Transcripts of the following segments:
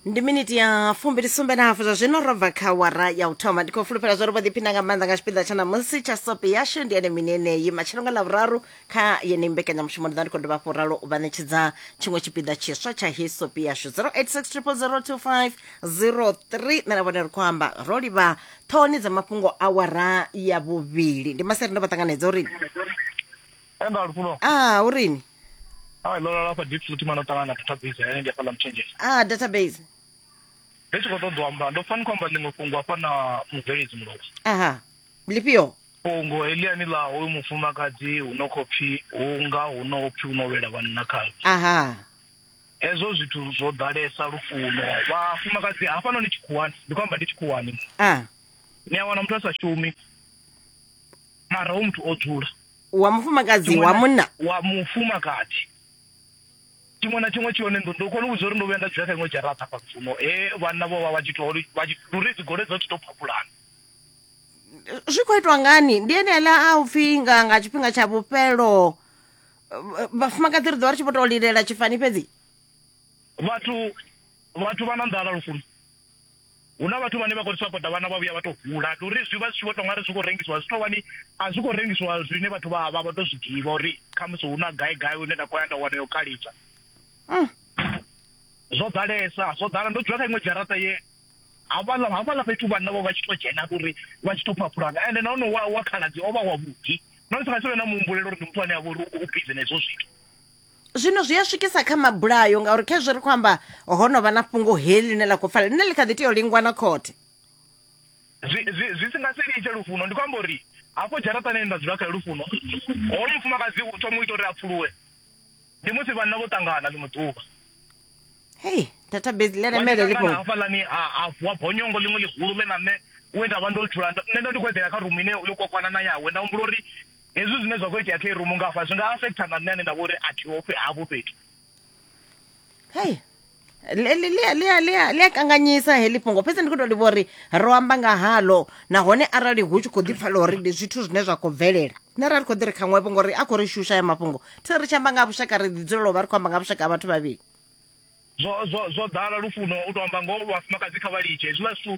ndi miniti ya fumbili sumbe na hafu zwa zwino ro bva kha wara ya u thoma ndi khou fulufhela zwa ri vho ḓiphina nga maanḓa nga tshipiḓa tsha ṋamusi tsha sope yashu ndi ene mini eneyi matshelo nga lavhuraru kha yeneyi mbekanyamushumo ndi ḓa ndi khou dovha hafhu ralo u vha ṋetshedza tshiṅwe tshipiḓa tshiswa tsha hei sope yashu 0860002503 nṋe na vhone ri khou amba ro livha ṱhohoni dza mafhungo a wara ya vhuvhili ndi maseri ndo vha ṱanganedza uri Enda lufuno. Ah, urini? Ah, lola lapha deep futhi mano tanga na database eh ngiya phala mchange. Ah, database. Bese ko ṱoḓwa amba ndo fani kwamba ḽiṅwe fhungo hafha na mubveledzi mulovha. Aha. Lifhio? Fhungo heliani ḽa hoyu mufumakadzi hu no khou pfi hu nga hu no pfi hu no wela vhanna khayo. Aha. Hezwo zwithu zwo ḓalesa lufuno. Vhafumakadzi hafha noni tshikhuwani ndi kwamba ndi tshikhuwani. Ah. Ni a wana muthu a sa shumi mara hu muthu o dzula. wa mufumakadzi Chimwe wa na- munna wa mufumakadzi tshiṅwe na tshiṅwe tshihone ndo ndo kona u vhudza uri ndo vhuya nda dzula kha iṅwe dzharaṱa fha mufumo he vhanna vho vha vha tshi to ri- vha tshi- luri dzigole dzo tshi to phapulana zwi khou itwa ngani ndi enela a u pfhi nga nga tshifhinga tsha vhufhelo eh, vhafumakadzi ri ḓo vha ri tshi vho tou lilela tshifani fhedzi vhathu vhathu vha na nḓala lufuno Hu na vhathu vhane vha khou ri sapota vhana vha vhuya vha tou hula ndi uri zwi vha zwi tshi vho tou nga ri zwi khou rengisiwa zwi tou vha ni a zwi khou rengisiwa zwine vhathu vha vha vha tou zwi ḓivha uri khamusi hu na gai gai hune nda khou ya nda wana yo kalitsa zwo ḓalesa zwo ḓala ndo dzula kha iṅwe dzharaṱa ye hafhaḽa hafhaḽa fhethu vhanna vho vha tshi tou dzhena ndi uri vha tshi tou phaphulana ende nahone wa wa khaladzi o vha wavhuḓi na musi nga si vhe na muhumbulelo uri ndi muthu ane a vha uri u bizi na hezwo zwithu zwino zwi a swikisa kha mabulayo ngauri kha zwi ri khou amba ho no vha na fhungo heli ḽine ḽa khou pfala ḽine ḽi kha ḓi tea u lingwa na khothe zwi si nga si litshe lufuno ndi khou amba uri hafho dzharaṱani nda dzula kha lufuno hoyo mufumakadzi u thoma u ita uri a pfuluwe ndi musi vhanna vho ṱangana ḽiṅwe ḓuvha hei database ḽi lemele ḽi khou hafhaḽani a vuwa bonyongo ḽiṅwe ḽihulu ḽe na nṋe we nda vha ndo dzula nṋe ndo ndi khou eḓela kha rumu ine yo kokwana na yawe nda humbula uri Hezwi zwine zwa khou itea kha irumu nga hafha zwi nga afektha na nṋe ane nda vha uri a thiho hafho fhethu hei ḽi a kanganyisa heḽi fhungo fhedzi ndi khou tou livha uri ro amba nga halo nahone arali hu tshi khou ḓi pfala uri ndi zwithu zwine zwa khou bvelela nṋe ra ri khou ḓi ri kha ṅwevho ngori a khou ri shusha ya mafhungo thi ri tshi amba nga vhushaka ri ḓi dzulela u vha ri khou amba nga vhushaka ha vhathu vhavhili zwo zwo zwo ḓala lufuno u to amba ngoho vhafumakadzi kha vha litshe hezwiḽa zwithu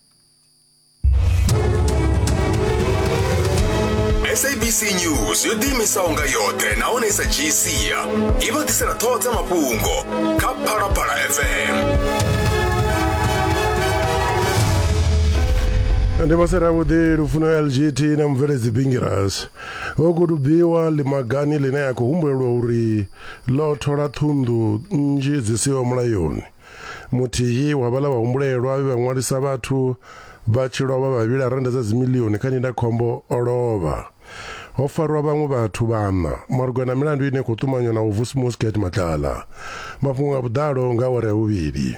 sabc news yo ḓiimisaho nga yoṱhe nahone i sa dzhii sia i vha ḓisela ṱhoho dza mafhungo kha phalaphala fm ndi vhose ravhuḓi lufuno lgt na mubveledzi bingiras vho kudubiwa limagani line ya khou humbulelwa uri ḽo thola thundu nnzhi dzi siho mulayoni Muthihi wa vhaḽa vhahumbulelwa vhe vha ṅwalisa vhathu vha tshi lovha vha vhila rennda dza dzimilioni kha ndindakhombo o lovha. Ho farwa vhaṅwe vhathu vhaṋa malugana na milandu ine khou ṱumanywa na u vusimuwa Sket Matlala. Mafhungo nga vhuḓalo nga awara ya vhuvhili.